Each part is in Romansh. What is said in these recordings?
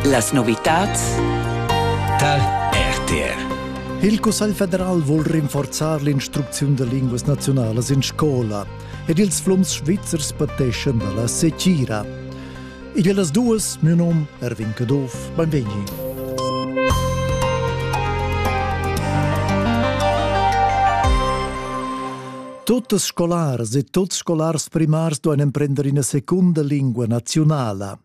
Las novitads tar RTR. Il Cussegl federal vul rinforzar l'instrucziun da linguas naziunalas in scola ed ils flums svizzers pateschan da la secira. Ed las duas, mio nom Erwin Caduff, benvegni. Tuttas scolaras e tuts scolars primars duein emprender ina secunda lingua nazionala.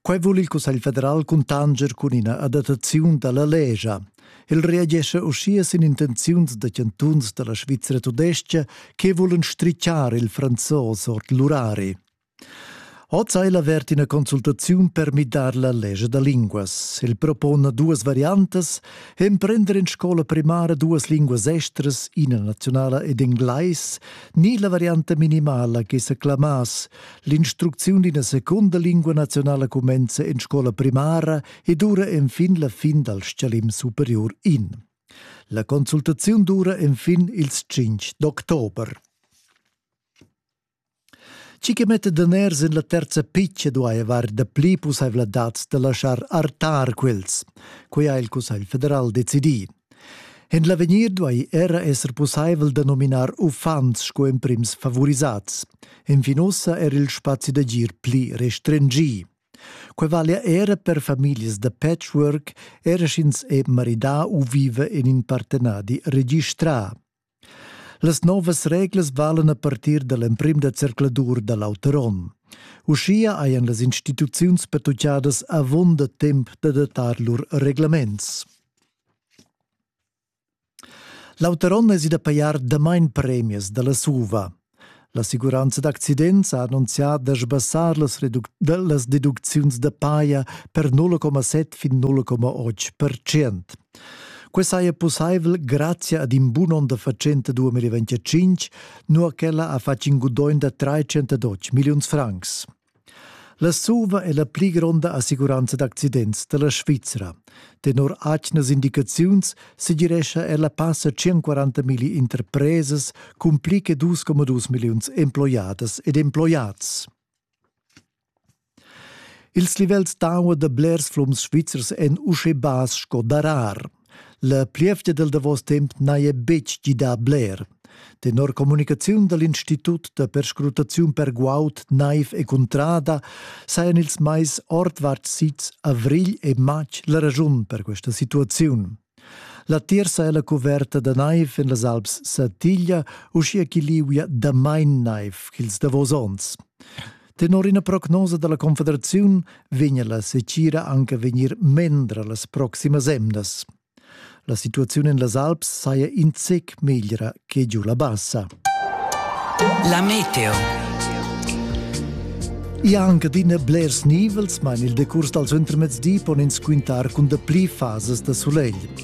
Quei vul il Cussegl federal cuntanger cun ina adattaziun dalla legia. El reagesce uschia sin intenziuns da cantuns dalla Svizra tudestga che vulan strichar il franzos ord l'urari. Oz ha el avert ina consultaziun per midar la lescha da linguas. El propona duas variantas, emprender en scola primara duas linguas estras, ina nazionala ed englais, ni la varianta minimala che sa clamass l'instrucziun d'ina secunda lingua nazionala cumenza en scola primara e dura enfin la fin dal stgalim superior in. La consultaziun dura enfin ils 5 d'october. Chi che metta daners in la terza pitcha duai avair dapli pussaivladads da laschar artar quels. Quai ha il Cussegl federal decidì. En l'avegnir duai era esser pussaivel da nominar uffants sco emprims favorisats. Enfin ussa era il spazi d'agir pli restringì. Quai valia era per famiglias da patchwork, era sch'ins è maridà u viva en in partenadi registrà. Las novas reglas valan a partir da l'emprim da zercladur da l'auter onn. Uschia hajan las instituziuns pertuccadas avunda temp d'adattar lur reglaments. L'auter onn es ida pajar damain premias da la SUVA. L'assicuranza d'accidents ha annunzià da sbassar las, las deducziuns da paja per 0,7 fin 0,8%. Quest saja pussaivel grazia ad in bun onn da fatschenta 2025, nua ch'ella ha fatg in gudogn da 312 milliuns francs. La suva è la pli gronda assicuranza d'accidents da la Svizra. Tenor atgnas indicaziuns segirescha ella passa 140 milli interpresas cun pli che 2,2 milliuns emploiadas ed emploiads. Ils livels d'aua da blers flums svizzers èn uschè bass sco darar. La plievgia dal davos temp n'haja betg gidà bler. Tenor communicaziun da l'Institut da perscrutaziun per guaud, naiv e cuntrada sajan ils mais ordvart sids avrigl e matg la raschun per questa situaziun. L'attir saja la cuverta da naiv en las Alps Satiglia, uschia ch'i liuia damain naiv ch'ils davos onns. Tenor ina prognosa dalla Confederaziun vegna la secira anche vegnir mendra las proximas emdas. La situazione en las Alps saja in zec meglra che giù la bassa. La meteo. E anche din blers nivels, mein il decurs dal intermezdi pon ins quintar cun de pli fases da solegl.